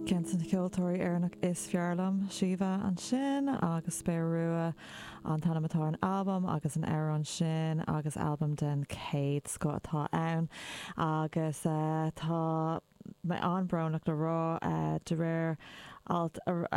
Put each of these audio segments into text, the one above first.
Ceann de na ceoltóirí Éireannach is fearr liom, Síomha, ansin, agus Spéir Rua an t-ainm atá ar an albam agus an amhrán sin, agus albam den chéad scoth atá ann, agus tá mé an-brónach le rá, de réir alt ar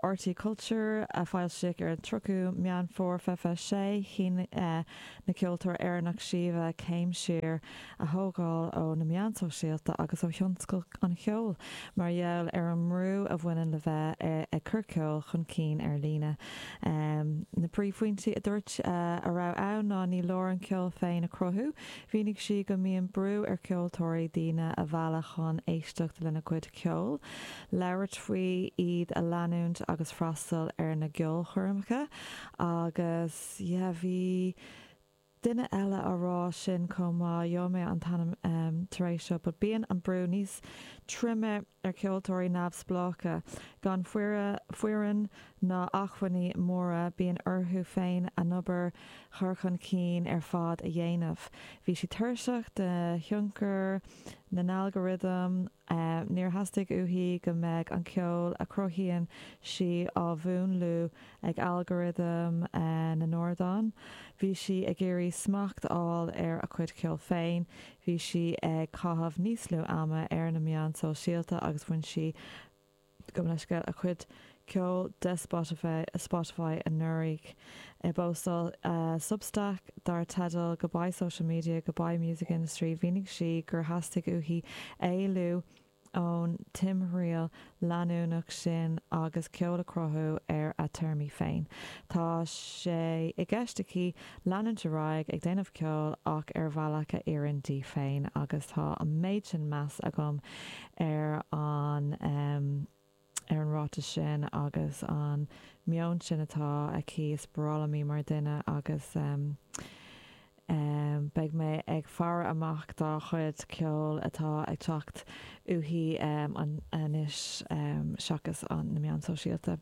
RTÉ Culture a foilsíodh ar an 30ú Meán Fómhair, 26, chinn an ceoltóir Éireannach Síomha céim siar a thógáil ó na meáin shóisialta agus ó thionscal an cheoil mar gheall ar an mbrú a bhaineann le bheith ag cur ceoil chun cinn ar líne. Na príomhphointí a dúirt a bhí ann ná ní leor an ceol féin a chruthú, mhínigh sí go mbíonn brú ar cheoltóirí daoine a mhealladh chun éisteacht lena gcuid ceoil, labhairt faoi, iad a leanúint agus freastal ar na gceolchoirmeacha agus eh bhí duine eile á rá sin chomh maith, gheobhaidh mé an t-ainm tar éis seo, but bíonn an brú níos troime ar cheoltóirí neamhspleácha, gan foireann ná achmhainní móra, bíonn orthu féin an obair chur chun cinn ar fad a dhéanamh. Bhí sí tuirseach de thionchar na n-algorithm Níor theastaigh uaithi go mbeadh an ceol a chruthaíonn sí á mhúnlú ag algorithm na n-ardán. Bhí sí ag iarraidh smacht a fháil ar a cuid ceoil féin. Bhí sí ag caitheamh níos lú ama ar na meáin sóisialta agus bhain sí Gabh mo leithscéal, a cuid ceoil de Spotify anuraidh i bpóstáil Substack dar teideal Goodbye Social Media, Goodbye Music Industry, mhínigh sí gur theastaigh uaithi éalú ón timthriall leanúnach sin agus ceol a chruthú ar a téarmaí féin. Tá sé i gceist aici leanúint ar aghaidh ag déanamh ceoil ach ar bhealach a oireann di féin agus tá an méid sin meas agam ar an ar an ráiteas sin agus an meon sin atá aici is baralaimí mar duine agus em em beidh mé ag faire amach dá chuid ceoil atá ag teacht uaithi em an anois em seachas an na meáin sóisialta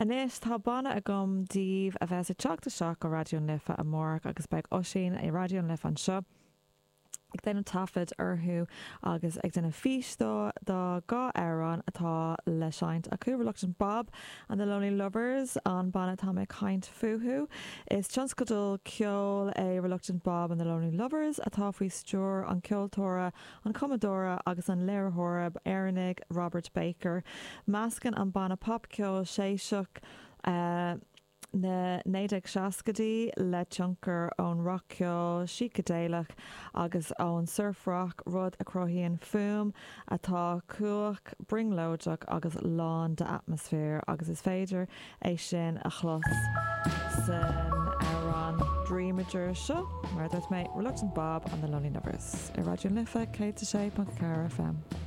anois tá banna agam daoibh a bheas ag teacht isteach go Raidió na Life amárach agus beidh Oisín i Raidió na Life anseo ag déanamh taifid orthu agus ag déanamh fís do do dhá amhrán atá le seinnt acu, Reluctant Bob and the Lonely Lovers, an banna atá mé ag caint fúthu. Is tionscadal ceoil é Reluctant Bob and the Lonely Lovers atá faoi stiúir an ceoltóra, an cumadóra agus an léiritheora Éireannaigh Robert Baker. Meascann an banna pop-ceol séiseach, na 1960idí le tionchar ón rac-cheol sícideileach agus ón surf-rock, rud a chruthaíonn fuaim atá cumhach, brionglóideach agus lán d'atmaisféar agus is féidir é sin a chlos san amhrán Dreamager seo, mar a dúirt mé, Reluctant Bob and the Lonely Lovers ar Raidió na Life 106.4 FM.